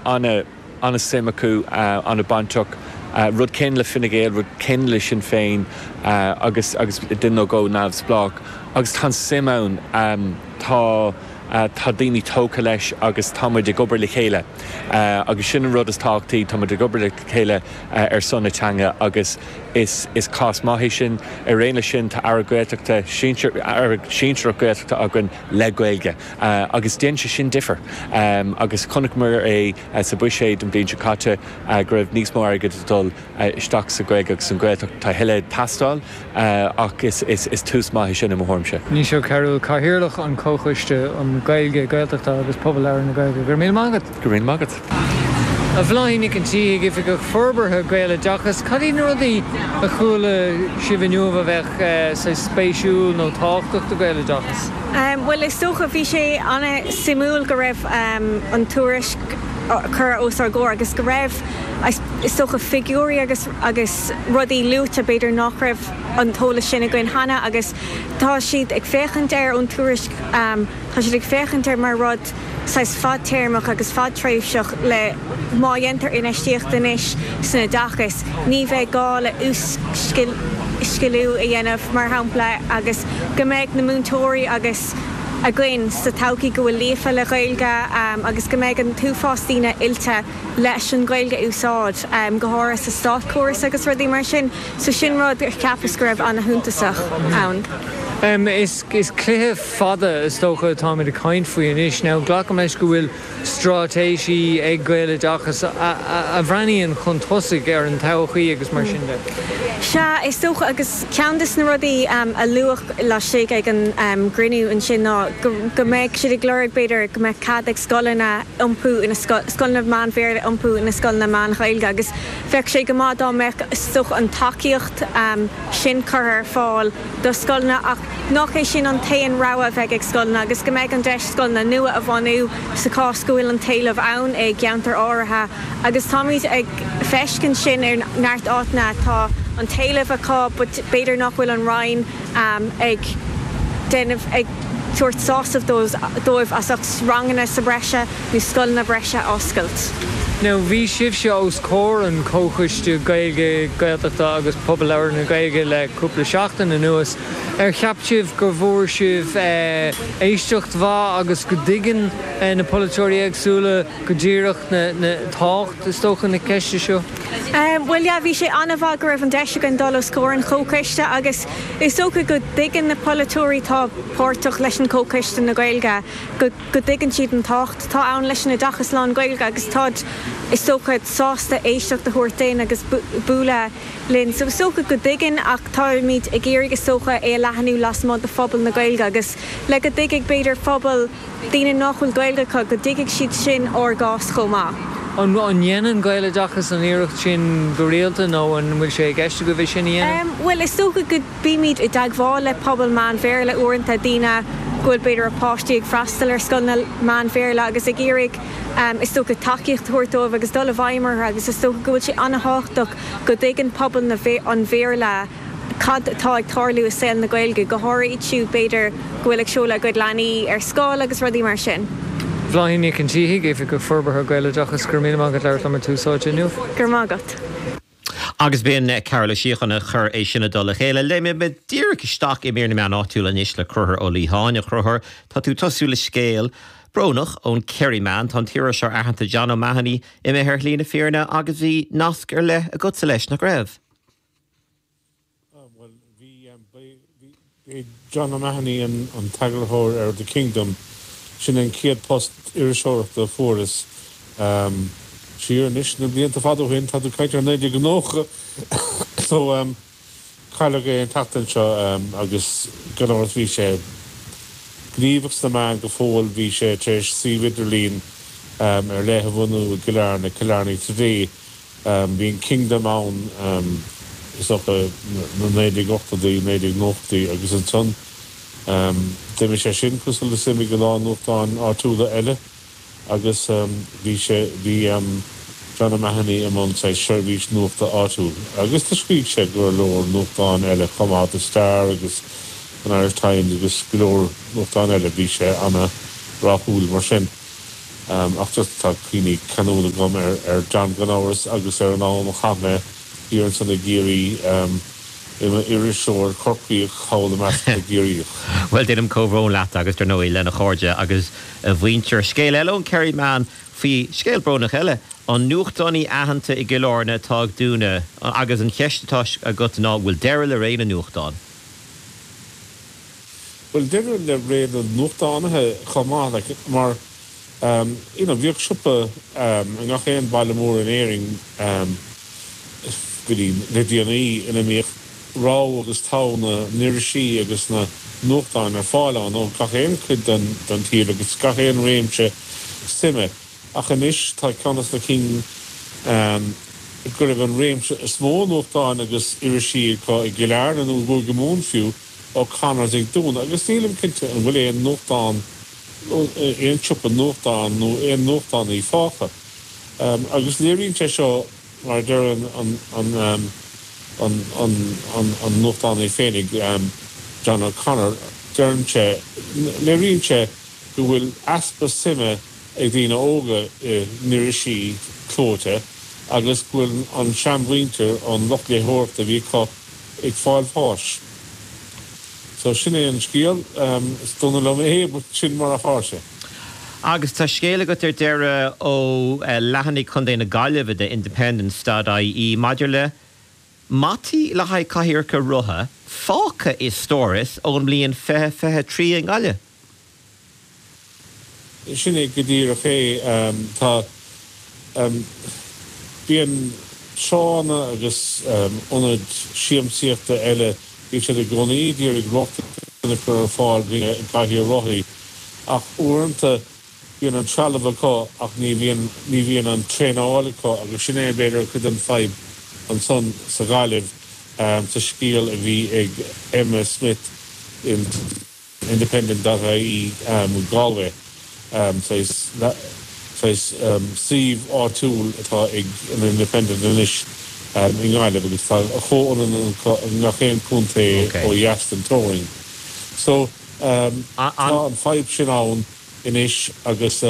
ana ana suim acu ana bainteach rud éigin le Fine Gael rud éigin le Sinn Féin agus agus den nó go neamhspleách agus tá an suim ann tá tá daoine tógtha leis agus tá muid ag obair le chéile agus sin an rud is tábhachtaí tá muid ag obair le chéile ar son na teanga agus is is cás maith é sin araon leis sin tá Aire Gaeltachta sinsir Aire sinsearach Gaeltachta againn le Gaeilge agus déanann sé sin difear agus chonaiceamar é sa Bhuiséad an bhliain seo caite go raibh níos mó airgid ag dul isteach sa Ghaeilge agus an Ghaeltacht. Tá a thuilleadh ag teastáil ach is tús maith é sin i mo thuairimse. Naoise Ó Cearúil, Cathaoirleach an Chomhchoiste um Ghaeilge, Gaeltachta agus Pobal Labhartha na Gaeilge. Go raibh míle maith agat. Go raibh maith agat. A Bhláithín Nic an Tí, Oifigeach Forbartha Gaeloideachas, cad iad na rudaí a chuala sibh inniu a bheadh saghas spéisiúil nó tábhachtach do Gaeloideachas? Bhuel, is dócha, bhí sé an-suimiúil go raibh an tuairisc curtha os ár gcomhair agus go raibh, is dócha, figiúirí agus agus rudaí luaite b'fhéidir nach raibh an t-eolas sin againn cheana agus tá siad ag féachaint air ón tuairisc, tá siad ag féachaint air mar rud, saghas fadtéarmach agus fadtréimhseach le má dhéantar infheistíocht anois san oideachas, ní bheidh gá le uas-sciliú a dhéanamh, mar shampla, agus go mbeidh na múinteoirí agus againn sa todhchaí go bhfuil líofa le Gaeilge agus go mbeidh an t-uafás daoine oilte leis an Ghaeilge a úsáid, go háirithe sa státchóras agus rudaí mar sin. So sin rud a cheapas go raibh an-shuntasach ann. Is cluiche fada, is dócha, atáimid ag caint faoi anois. Now, glacaim leis go bhfuil straitéisí ag Gaeloideachas a bhreathnaíonn chun tosaigh ar an todhchaí agus mar sin de. Sea, is dócha, agus ceann des na rudaí a luadh laistigh ag an gcruinniú ansin ná go mbeadh siad ag lorg, b'fhéidir, go mbeadh cead ag scoileanna iompú ina scoileanna meán-Bhéarla iompú ina scoileanna meán-Ghaeilge agus bheadh sé go maith dá mbeadh, is dócha, an tacaíocht sin curtha ar fáil. do scoileanna ach nach é sin an t-aon rogha a bheidh ag scoileanna agus go mbeidh an deis scoileanna nua a bhunú sa chás go bhfuil an t-éileamh ann i gceantair áirithe agus táimid ag feiscint sin ar neart áiteanna atá an t-éileamh acu but b'fhéidir nach bhfuil an Roinn ag déanamh ag tabhairt sásamh dóibh as ucht ranganna sa bhreise. nó scoileanna breise a oscailt. Now bhí sibhse os comhair an Chomhchoiste Gaeilge, Gaeltachta agus Pobal Labhartha na Gaeilge le cúpla seachtain anuas. Ar cheap sibh go bhfuair sibh éisteacht mhaith agus go dtuigeann na polaiteoirí éagsúla go díreach tábhacht, is dócha, na ceiste seo? Bhuel, yeah, bhí sé an-mhaith go raibh an deis againn dul os comhair an Chomhchoiste agus is dócha go dtuigeann na polaiteoirí atá páirteach leis an gComhchoiste na Gaeilge go go dtuigeann siad an tábhacht atá ann leis an oideachas lán-Ghaeilge agus táid, is dócha, sásta éisteacht a thabhairt duinn agus bualadh linn. So is dócha go dtuigeann ach táimid ag iarraidh, is dócha, é a leathanú lasmuigh de phobal na Gaeilge agus le go dtuigfidh, b'fhéidir, pobal daoine nách bhfuil Gaeilge acu, go dtuigfidh siad sin ár gcás chomh maith. An ndéanann Gaeloideachas an iarracht sin go rialta nó an bhfuil sé i gceist agaibh é sin a dhéanamh? Bhuel, is dócha go. Bímid i dteagmháil le pobal meán-Bhéarla uaireanta, daoine go bhfuil, b'fhéidir, a páistí ag freastal ar scoileanna meán-Bhéarla agus ag iarraidh, is dócha, tacaíocht a thabhairt dóibh agus dul i bhfeidhm orthu agus is dócha go bhfuil sé an-thábhachtach go dtuigeann pobal na, an Bhéarla cad atá ag tarlú i saol na Gaeilge, go háirithe iad siúd, b'fhéidir, go bhfuil ag seoladh a gcuid leanaí ar scoil agus rudaí mar sin. Bláithín Nic an tSíthigh, Oifigeach Forbartha Gaeloideachas, go raibh míle maith agat as labhairt liom ar Tús Áite inniu. Go raibh maith agat. Agus b'in Cearbhall Ó Síocháin a chuir é sin i dtoll a chéile. Léimfidh mé díreach isteach i mír na meán áitiúla anois le Concubhar Ó Liatháin. A Choncubhair, tá tú ag tosú le scéal brónach ón Kerryman. Tá an t-iriseoir aitheanta John O'Mahony imithe ar shlí na fírinne agus bhí nasc ar leith agatsa leis, nach raibh? B'é John O'Mahony an t-eagarthóir ar The Kingdom, sin an chéad phost iriseoireachta a fuaireas siar anois na blianta fada ó shin, tá tú ag caint ar 1990 so cailleadh é an tseachtain seo agus gan amhras bhí sé gníomhach sna meáin go fóill, bhí sé tar éis suíomh idirlín ar leith a bhunú i gCill Airne, Killarney Today. Bhí an Kingdom ann is dócha 1980idí, 1990idí agus ansan d'imigh sé sin, cosúil le mar a d'imigh a lán nuachtáin áitiúla eile agus bhí sé, bhí John O'Mahony i mbun seirbhís nuachta áitiúil agus do scrígh sé do go leor nuachtáin eile chomh maith, The Star agus an Irish Times agus go leor nuachtáin eile, bhí sé ana rathúil mar sin. Ach just tá cuimhní ceanúla agam ar John gan amhras agus ar an am a chaith mé thiar ansan i gCiarraí i mo iriseoir Corcaíoch thall i measc na gCiarraíoch. Bhuel, deinim comhbhrón leat agus dar ndóigh lena chairde agus a mhuintir. Scéal eile ón Kerryman fé scéal brónach eile, an nuachtánaí aitheanta i gCill Airne atá ag dúnadh agus an cheist atá agat ná an bhfuil deireadh le ré na nuachtán? Bhuel, deireadh le ré na nuachtánaithe chomh maith, like, mar, you know, bhíodh siopa i ngach aon bhaile mór in Éirinn go dtí le déanaí ina mbíodh rogha agus togha na n-irisí agus na nuachtáin ar fáil ann ó gach aon chuid den tír agus gach aon réimse suime ach anois tá ceann de na cinn go raibh an réimse is mó nuachtáin agus irisí acu i gCill Airne nó i gCúige Mumhan fiú. O'Connor ag dúnadh agus nílim cinnte an bhfuil aon nuachtán, nó aon siopa nuachtán, nó aon nuachtánaí fágtha. Agus léiríonn sé seo, mar a deireann an nuachtánaí féinig, John O'Connor, deireann sé, léiríonn sé go bhfuil easpa suime ag daoine óga in irisí clóite agus go bhfuil an seanmhuintir, an lucht léitheoireachta a bhí acu, ag fáil bháis. So sin é an scéal. Is dona liom é but sin mar atá sé. Agus tá scéal agat ar deireadh ó leathanaigh Chontae na Gaillimhe de Independent dot ie maidir le mataí le haghaidh cathaoireacha rotha fágtha i stóras ón mbliain 2023 i nGaillimh. Sin é go díreach é. Tá. Bíonn tránna agus ionaid siamsaíochta eile, bíonn siad i gcónaí ag iarraidh rochtain a chur ar fáil do chathaoireacha rothaí, ach uaireanta bíonn an trealamh acu ach ní bhíonn, ní bhíonn an traenáil acu agus sin é b'fhéidir cuid den fadhb ansan sa Ghaillimh sa scéal a bhí ag Emma Smith in Independent dot ie Galway saghas suíomh áitiúil atá ag an Independent anois i nGaillimh agus tá a chomhionann acu i ngach aon contae ó dheas den teorainn so tá an fadhb sin ann anois agus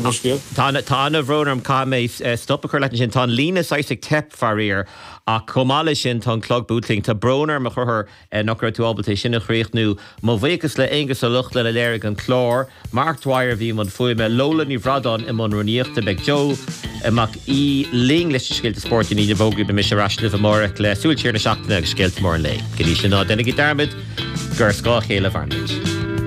Tá ana bhrón orm, caithfidh mé stop a chur leat ansin. Tá an líne saghas ag teip, faraor, ach chomh maith leis sin tá an clog buailte linn. Tá brón orm, a Chríostóir, nach raibh tú ábalta é sin a chríochnú. Mo bhuíochas le Aonghus Ó Lochlainn a léirigh an clár, Mark Dwyer a bhí i mbun fuaime, Lola Ní Bhradáin i mbun rúnaíochta. Beidh Joe Mac Aoidh linn leis na scéalta spóirt i ndiaidh na bhfógraí. Beidh mise ar ais libh amáireach le Súil Siar na Seachtaine agus scéalta móra an lae. Go dtí sin, ná deinigí dearmad gur ar scáth a chéile a mhairimid.